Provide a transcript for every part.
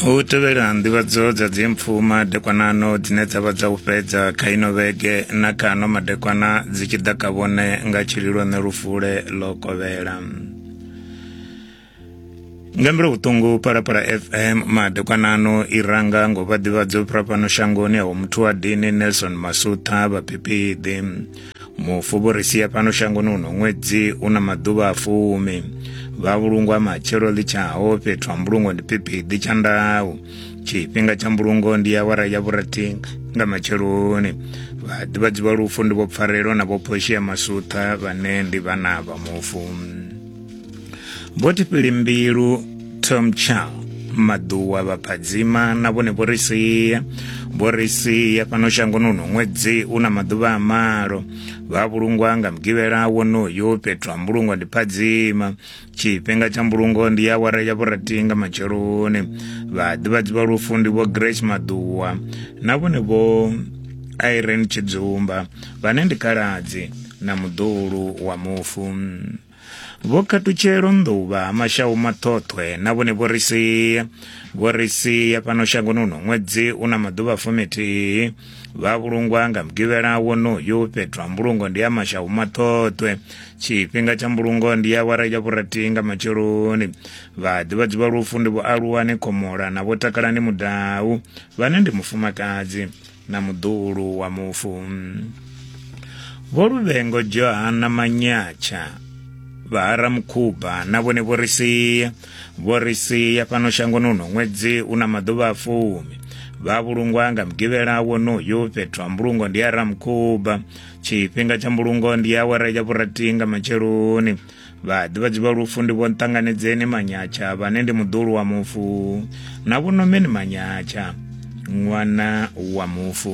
u tevhela nḓivhadzo dza dzimpfu madekwanano dzine dza vha dza u fhedza kha ino vhege na kha ano madekwana dzi tshi ḓa ka vhone nga tshililo ṋe lufule ḽo kovhela nga mbilu vhuṱungu parapara fm madekwanano i ranga ngo vha ḓivhadzo fhano shangoni awo muthu wa dini nelson masutha vhaphiphiḓi mufu vho ri sia fhano shangoni uno ṅwedzi u na maḓuvha a fumi vha vhulungwa matshelo ḽi tshaho fhethu ha mbulungo ndi phiphiḓi tsha ndau tshifhinga tsha mbulungo ndi awara ya vhurathi nga matsheloni vhaḓivhadzi vha lufu ndi vho pfarelo na vho phoshi ya masutha vhane ndi vhana vha mufu vho tifhili mbilu tom chow maḓuwa vhaphadzima na vhone vho ri sia vho ri sia fhano shangoni uno ṅwedzi u na maḓuvha a malo vha vhulungwa nga mugivhela wonoyo fhethu ha mbulungo ndi phadzima tshifhinga tsha mbulungo ndi ya awara ya vhurathi nga matsheloni vhaḓivhadzi vha lufu ndi vho grace maḓuwa na vhone vho irene tshidzumba vhane ndi khaladzi na muḓuhulu wa mufu vho khatutshelo nḓuvha ha mashau maṱhoṱhwe na vhone vho ri sia vho ri sia fhano shangoni uno ṅwedzi u na maḓuvha fumithihi vha vhulungwa nga mugivhela wonoyu fhethu ha mbulungo ndi ya mashau maṱhoṱhwe tshifhinga tsha mbulungo ndi ya wara ya vhurathi nga matsheloni vhaḓivhadzi vha lufu ndi vho aluwani khomola na vho takalani mudau vhane ndi mufumakadzi na muḓuhulu wa mufu vho luvhengo johana manyatsha vha haramukhuba na vhone vho ri sia vho ri sia fhano shangoni uno ṅwedzi u na maḓuvha a fumi vha vhulungwa nga mugivhela wonoyo fhethu ha mbulungo ndi haramukhuba tshifhinga tsha mbulungo ndi awara ya vhurathi nga matsheloni vhaḓivhadzi vha lufu ndi vho nṱanganedzeni manyatsha vhane ndi muḓulu wa mufu na vhonomeni manyatsha ṅwana wa mufu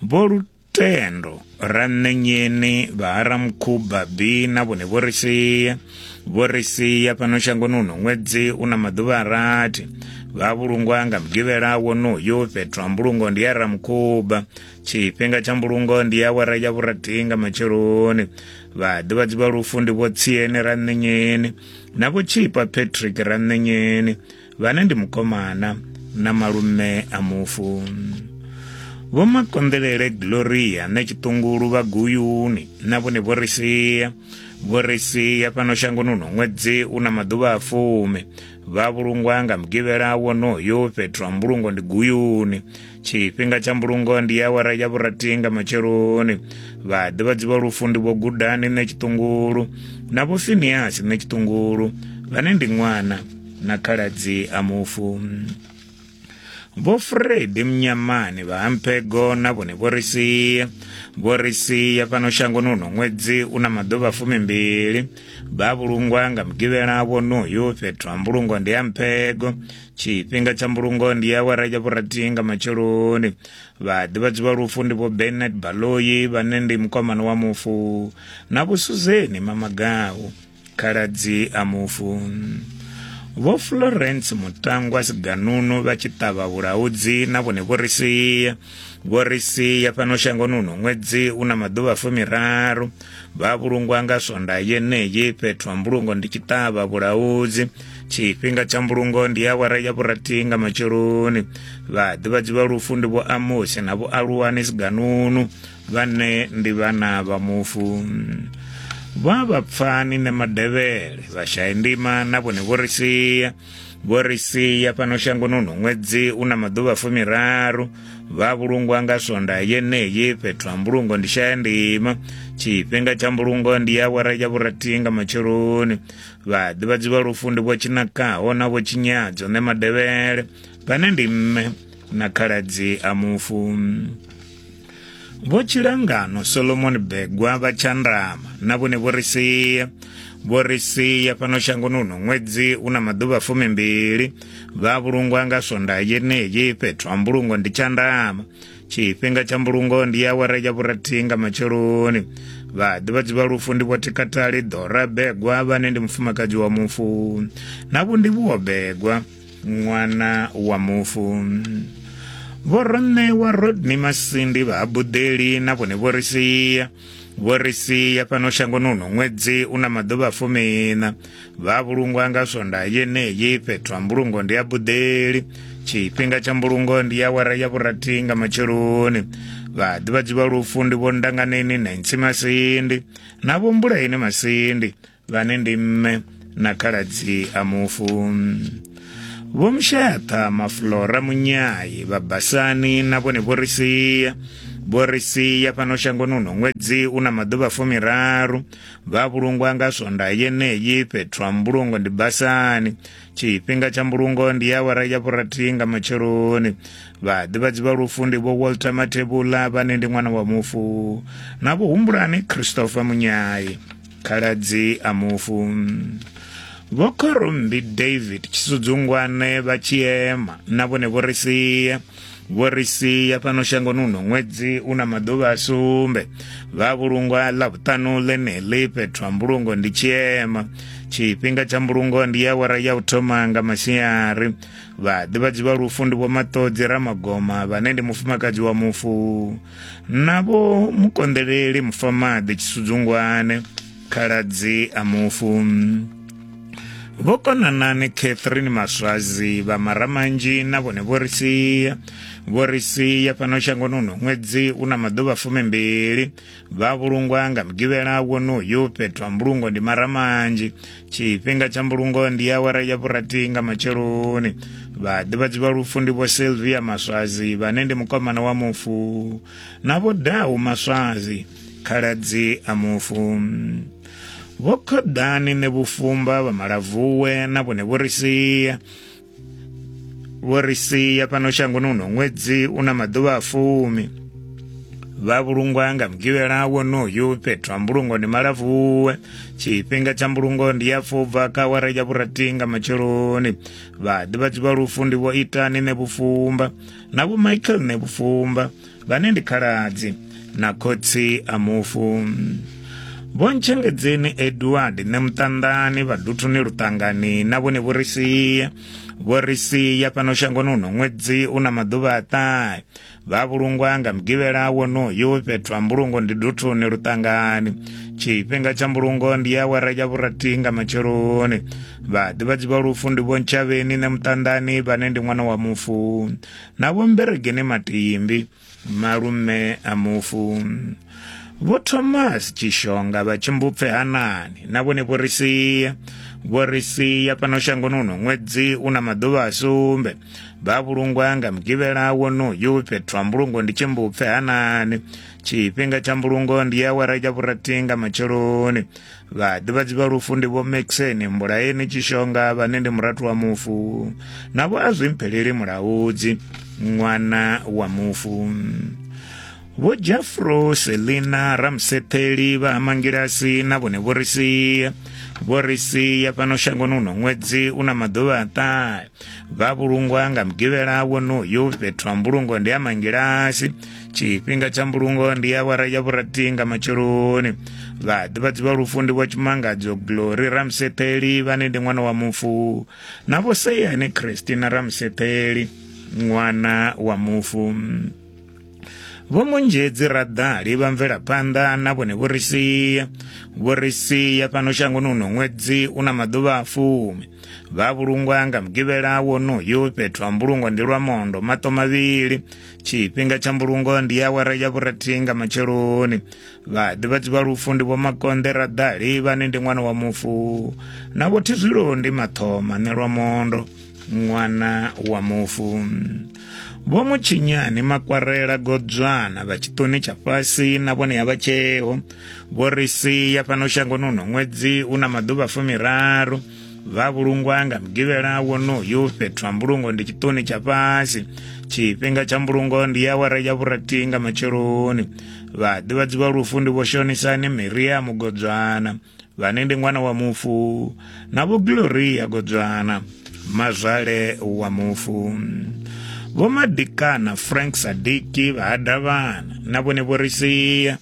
vho lutendo ranṋenyeni vhaharamukhuba bi na vhone vho ri sia vho ri sia fhano shangoni uno ṅwedzi u na maḓuvha a rathi vha vhulungwa nga mugivhela wonoyo fhethu ha mbulungo ndi ya ramukhuba tshifhinga tsha mbulungo ndi awara ya vhurathi nga matsheloni vhaḓivhadzi vha lufu ndi vhotsiene ra nṋenyeni na vhotshipha patrick ra nṋenyeni vhane ndi mukomana na malume a mufu vho makonḓelele gloria na tshiṱungulu vha guyuni na vhone vho ri sia vho ri sia fhano shangoni uno ṅwedzi u na maḓuvha a fumi vha vhulungwa nga mugivhela wonoyo fhethu ha mbulungo ndi guyuni tshifhinga tsha mbulungo ndi awara ya vhurathi nga matsheloni vha ḓivhadzi vha lufu ndi vho gudani nṋe tshiṱungulu na vho finiasi nṋe tshiṱungulu vhane ndi ṅwana na khaladzi a mufu vho fredi mnyamani vha hampego na vhone vho ri sia vho ri sia fhano shangoni uno ṅwedzi u na maḓuvha fumimbili vha vhulungwa nga mugivhela wonoyu fhethu ha mbulungo ndi hampego tshifhinga tsha mbulungo ndi ya awara ya vhurathi nga matsheloni vhaḓivhadzi vha lufu ndi vho bernard baloyi vhane ndi mukomana wa mufu na vhusuzeni mamagau khaladzi a mufu vho florence mutangwa siganunu vha tshi ṱavha vhulaudzi na vhone vho ri sia vho ri sia fhano shangoni uno ṅwedzi u na maḓuvha fumiraru vha vhulungwa nga swonda yeneyi fhethu ha mbulungo ndi tshi ṱavha vhulaudzi tshifhinga tsha mbulungo ndi awara ya vhurathi nga matsheloni vhaḓivhadzi vha lufu ndi vho amosi na vho aluwani siganunu vhane ndi vhana vha mufu vha vhapfani na madevhele vhashaya ndima na vhone vho ri sia vho ri sia fhano shangoni uno ṅwedzi u na maḓuvha fumiraru vha vhulungwa nga swonda yeneyi fhethu ha mbulungo ndi shaya ndima tshifhinga tsha mbulungo ndi awara ya vhurathi nga matsheloni vhaḓivhadzi vha lufu ndi vho tshinakaho na vho tshinyadzo ne madevhele vhane ndi mme na khaladzi a mufu vho tshilangano solomon begwa vha tshandama na vhone vho ri sia vho ri sia fhano shangoni uno ṅwedzi u na maḓuvha fumimbili vha vhulungwa nga swondaha yeneyi fhethu ha mbulungo ndi tshandama tshifhinga tsha mbulungo ndi awara ya vhurathihi nga matsheloni vhaḓivhadzi vha lufu ndi vhothikatali ḓora begwa vhane ndi mufumakadzi wa mufu na vhundivhuwo begwa ṅwana wa mufu vho roṋewa rodney masindi vha habuḓeli na vhone vho ri sia vho ri sia fhano shangoni uno ṅwedzi u na maḓuvha fumina vha vhulungwa nga swonda yeneyi fhethu ha mbulungo ndi ya buḓeli tshifhinga tsha mbulungo ndi ya wara ya vhurathi nga matsheloni vhaḓivhadzi vha lufu ndi vho ndanganeni na intsimasindi na vho mbulaini masindi vhane ndi mme na khaladzi a mufu vho mshayaṱha maflora munyayi vha basani na vhone vho ri sia vho ri sia fhano shangoni uno ṅwedzi u na maḓuvha fumiraru vha vhulungwa nga swonda yeneyi fhethu ha mbulungo ndi basani tshifhinga tsha mbulungo ndi awara ya vhurathi nga matsheloni vhaḓivhadzi vha lufu ndi vho walter mathebula vhane ndi ṅwana wa mufu na vho humbulani christopher munyayi khaladzi a mufu vho khorumbi david tshisudzungwane vha tshiema na vhone vho ri sia vho ri sia fhano shangoni uno ṅwedzi u na maḓuvha a sumbe vha vhulungwa ḽa vhuṱanu ḽeneḽi fhethu ha mbulungo ndi tshiema tshifhinga tsha mbulungo ndi ya wara ya u thoma nga masiari vhaḓivhadzi vha lufu ndi vho maṱodzi ramagoma vhane ndi mufumakadzi wa mufu navho mukonḓeleli mufamaḓi tshisudzungwane khaladzi a mufu vho konanani catherine maswazi vha maramanzhi na vhone vho ri sia vho ri sia fhano shangoni uno ṅwedzi u na maḓuvha fumimbili vha vhulungwa nga mugivhela wonoyu fhethu ha mbulungo ndi maramanzhi tshifhinga tsha mbulungo ndi awara ya vhurathi nga matsheloni vhaḓivhadzi vha lufu ndi vho silvia maswazi vhane ndi mukomana wa mufu na vho dau maswazi khaladzi a mufu vho khoḓani ne vhufumba vha malavuwe na vhone vho ri sia vho ri sia fhano shangoni uno ṅwedzi u na maḓuvha a fumi vha vhulungwa nga mugivhela wonoyu fhethu ha mbulungo ndi malavuwe tshifhinga tsha mbulungo ndi ya fubva kha wara ya vhurati nga matsheloni vhaḓivhadzi vha lufu ndi vho itani ne vhufumba na vho michael ne vhufumba vhane ndi khaladzi na khotsi a mufu vho ntshengedzeni edward ne muṱanḓani vhaduthuni luṱangani na vhone vho ri sia vho ri sia fhano shangoni uno ṅwedzi u na maḓuvha a ṱahe vha vhulungwa nga mugivhela wonoyo fhethu ha mbulungo ndi duthuni luṱangani tshifhinga tsha mbulungo ndi ya wara ya vhurati nga matsheloni vhaḓivhadzi vha lufu ndi vho ntshavheni ne muṱanḓani vhane ndi ṅwana wa mufu na vho mberegeni matimbi malume a mufu vho thomas tshishonga vha tshimbupfe hanani na vhone vho ri sia vho ri sia fhano shangoni uno ṅwedzi u na maḓuvha a sumbe vha vhulungwa nga mugivhela wonoyu fhethu ha mbulungo ndi tshimbupfe hanani tshifhinga tsha mbulungo ndi awara ya vhurathi nga matsheloni vhaḓivhadzi vha lufu ndi vho maxeni mbulaeni tshishonga vhane ndi murathu wa mufu navho a zwi mpheleli mulaudzi ṅwana wa mufu vho jafro selina ramsetheli vha hamangilasi na vhone vho ri sia vho ri sia fhano shangoni uno ṅwedzi u na maḓuvha a ṱahe vha vhulungwa nga mugivhela wonoyu fhethu ha mbulungo ndi ha mangilasi tshifhinga tsha mbulungo ndi awara ya vhurathi nga matsheloni vhaḓivhadzi vha lufu ndi vho tshimangadzo glory ramsetheli vhane ndi ṅwana wa mufu na vho seyane christina ramsetheli ṅwana wa mufu vho munzhedzi raḓali vha mvelaphanḓa na vhone vho ri sia vho ri sia fhano shangoni uno ṅwedzi u na maḓuvha a fumi vha vhulungwa nga mugivhela wonoyo fhethu ha mbulungo ndi lwa mondo maṱo mavhili tshifhinga tsha mbulungo ndi awara ya vhurathi nga matsheloni vhaḓivhadzi vha lufu ndi vho makonḓe raḓali vhane ndi ṅwana wa mufu na vho thizwilo ndi mathoma nelwa mondo ṅwana wa mufu vho mutshinyani makwarela godzwana vha tshiṱoni tsha fhasi na vhone ya vha tsheo vho ri sia fhano shangoni uno ṅwedzi u na maḓuvha fumiraru vha vhulungwa nga mugivhela wonoyu fhethu ha mbulungo ndi tshiṱoni tsha fhasi tshifhinga tsha mbulungo ndi awara ya vhurathi nga matsheloni vhaḓivhadzi vha lufu ndi vho shonisani miria mugodzwana vhane ndi ṅwana wa mufu na vho gloria godzwana mazwale wa mufu vho madikana frank sadiki vha hadavhana na vhone vho ri sia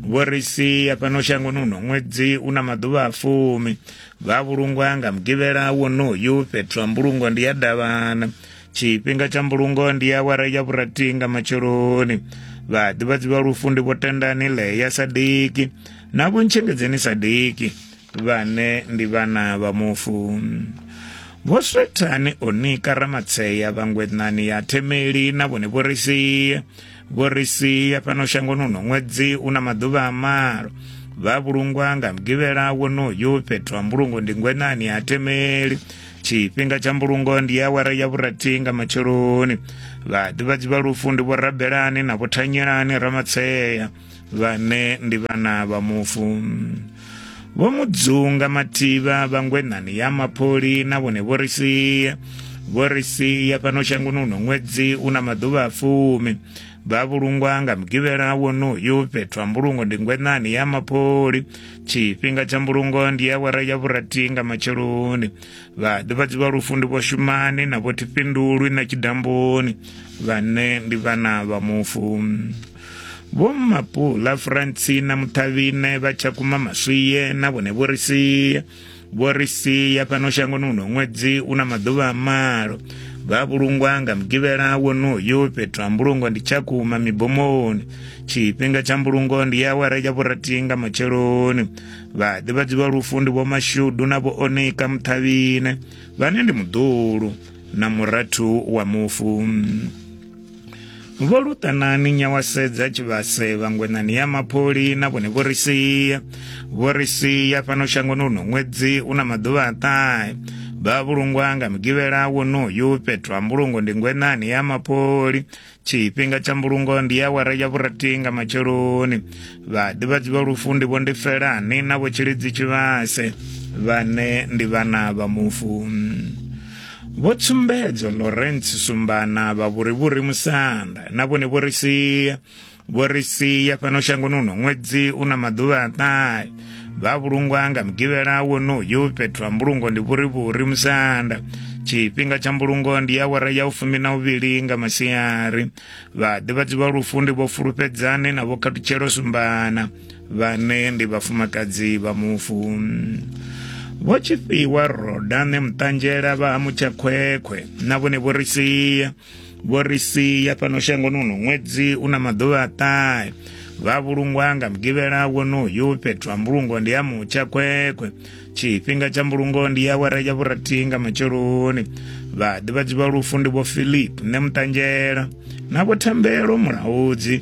vho ri sia fhano shangoni uno ṅwedzi u na maḓuvha a fumi Vha vhulungwa nga mugivhela wonoyu fhethu ha mbulungo ndi ya davhana tshifhinga tsha mbulungo ndi awara ya vhurathi nga matsheloni vhaḓivhadzi vha lufu ndi vho tendani ḽeya sadiki na vho ntshengedzeni sadiki vhane ndi vhana vha mufu vho swethani onika ramatshea vhangwenani ya themeli na vhone vho risiya vho ri sia fhano shangoni uno ṅwedzi u na maḓuvha a malo vha vhulungwa nga mugivhela wonoyu fhethu ha mbulungo ndi ngwenani ha temeli tshifhinga tsha mbulungo ndi awara ya vhurathi nga matsheloni vhaḓivhadzi vha lufu ndi vho rabelani na vho thanyelani ramatshea vhane ndi vhana vha mufu vho mu dzunga mathivha vhangwenani ya mapholi na vhone vho ri sia vho ri sia fhano shangoni uno ṅwedzi u na maḓuvha a fumi vha vhulungwa nga mugivhela wonoyu fhethu ha mbulungo ndi ngwenani ya mapholi tshifhinga tsha mbulungo ndi ya wara ya vhurathi nga matsheloni vhaḓivhadzi vha lufu ndi vhoshumani na vhothifhindulwi na tshidamboni vhane ndi vhana vha mufu Vho Mapula Francina Muthavhine vha Tshakhuma Maswiye na vhone vho ri sia vho ri sia fhano shangoni uno ṅwedzi una maḓuvha a malo vha vhulungwa nga mugivhela wonoyo fhethu ha mbulungo ndi tshakhuma mibomoni tshifhinga tsha mbulungo ndi ya awara ya vhurathi nga matsheloni vhaḓivhadzi vha lufu ndi vhomashudu na vhoonika muṱhavhine vhane ndi muḓulu na murathu wa mufu vho luṱanani nyawasedza tshivhase vhangwenani ya mapholi na vhone vho ri sia vho ri sia fhano shangoni uno ṅwedzi u na maḓuvha a ṱahe vha vhulungwa nga mugivhela wonoyu fhethu ha mbulungo ndi ngwenani ya mapholi tshifhinga tsha mbulungo ndi ya wara ya vhurathi nga matsheloni vhaḓivhadzi vha lufu ndi vho ndi felani na vho tshilidzi tshivhase vhane ndi vhana vha mufu Vho Tsumbedzo Lawrence Sumbana vha Vhurivhuri Musanda na vhone vho ri sia vho ri sia fhano shangoni uno ṅwedzi u na maḓuvha a ṱahe vha vhulungwa nga mugivhela wonoyu fhethu ha mbulungo ndi vhurivhuri musanda tshifhinga tsha mbulungo ndi awara ya u fumi na uvhili nga masiari vhaḓivhadzi vha lufu ndi vho fulufhedzane na vho khathutshelo sumbana vhane ndi vhafumakadzi vha mufu vho tshifhiwa rodane muṱanzhela vha ha mutshakhwekhwe na vhone vho ri sia vho ri sia fhano shangoni uno ṅwedzi u na maḓuvha a ṱahe vha vhulungwa nga mugivhela wonoyu fhethu ha mbulungo ndi ya mutsha khwekhwe tshifhinga tsha mbulungo ndi ya wara ya vhurathi nga matsheloni vhaḓivhadzi vha lufu ndi vho philip ne muṱanzhela na vho thembelo mulaudzi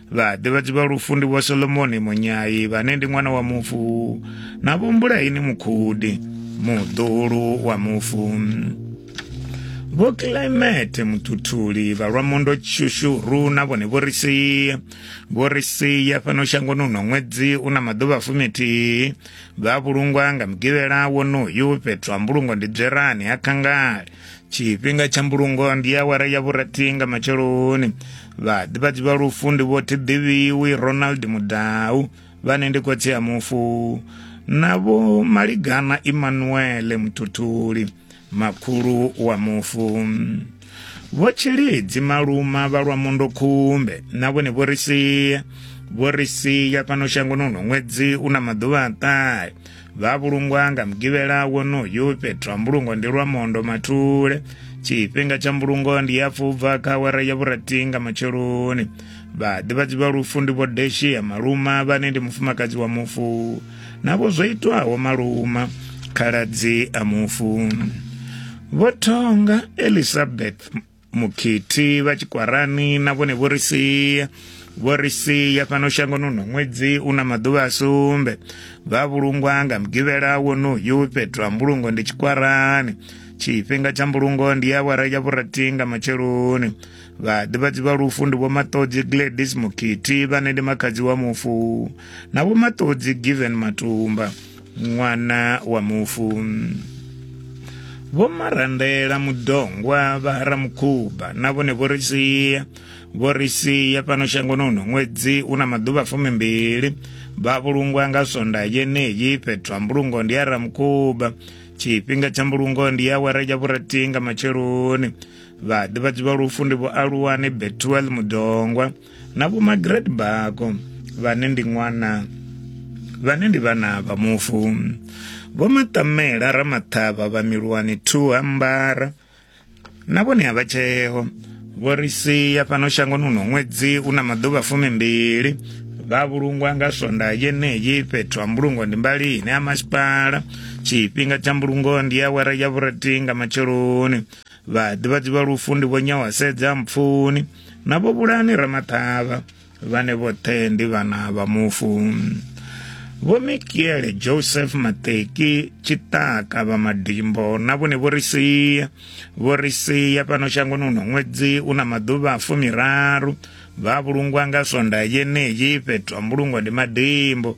vhaḓivhadzi vha lufu ndi vho solomoni munyai vhane ndi ṅwana wa mufu na vhombulaini mukhudi muḓulu wa mufu vho climate muthuthuli vha lwa mondo tshushuru na vhone vho ri sia vho ri sia fhano shangoni uno ṅwedzi u na maḓuvha fumithihi vha vhulungwa nga mugivhela wonoyu fhethu ha mbulungo ndi dzwerani ha khangale tshifhinga tsha mbulungo ndi awara ya vhurathi nga matsheloni vhaḓivhadzi vha lufu ndi vho thiḓivhiwi ronald mudau vhane ndi khotsi a mufu na vho maligana emmanuele muthuthuli makhulu wa mufu vho tshilidzi maluma vha lwa mundo khumbe na vhone vho ri sia vho ri sia fhano shangoni uno ṅwedzi u na maḓuvha a ṱahe vha vhulungwa nga mugivhela wonoyu fhethu ha mbulungo ndi lwa mondo mathule tshifhinga tsha mbulungo ndi ya pfubva kha awara ya vhurathi nga matsheloni vhaḓivhadzi vha lufu ndi vho deshi ya maluma vhane ndi mufumakadzi wa mufu navho zwo itwaho maluma khaladzi a mufu vho thonga elizabeth mukhithi vha tshikwarani na vhone vho ri sia vho ri sia fhano shangoni uno ṅwedzi u na maḓuvha a sumbe vha vhulungwa nga mugivhela wonoyu fhethu ha mbulungo ndi tshikwarani tshifhinga tsha mbulungo ndi ya awara ya vhurathi nga matsheloni vhaḓivhadzi vha lufu ndi vho maṱodzi gladys mukhithi vhane ndi makhadzi wa mufu na vho maṱodzi given matumba ṅwana wa mufu vho marandela mudongwa vha haramukhuba na vhone vho ri sia vho ri sia fhano shangoni uno ṅwedzi u na maḓuvha fumimbili vha vhulungwa nga sonda yeneyi fhethu ha mbulungo ndi haramukhuba tshifhinga tsha mbulungo ndi awara ya vhurathi nga matsheloni vhaḓivhadzi vha lufu ndi vho aluwani betuel mudongwa na vho magret bako vhane ndi ṅwana vhane ndi vhana vha mufu vho maṱamela ramaṱhavha vha milwani thu ambara na vhone a vha tsheo vho ri sia fhano shangoni uno ṅwedzi u na maḓuvha fumimbili vha vhulungwa nga swonda yeneyi fhethu ha mbulungo ndi mbali ine ya masipala tshifhinga tsha mbulungo ndi awara ya vhurathi nga matsheloni vhaḓivhadzi vha lufu ndi vho nyawasedza mpfuni na vho vhulani ramaṱhavha vhane vhoṱhe ndi vhana vha mufu vho mikiele joseph mateki tshiṱaka vha madimbo na vhone vho ri sia vho ri sia fhano shangoni uno ṅwedzi u na maḓuvha a fumiraru vha vhulungwa nga swonda yeneyi fhethu ha mbulungo ndi madimbo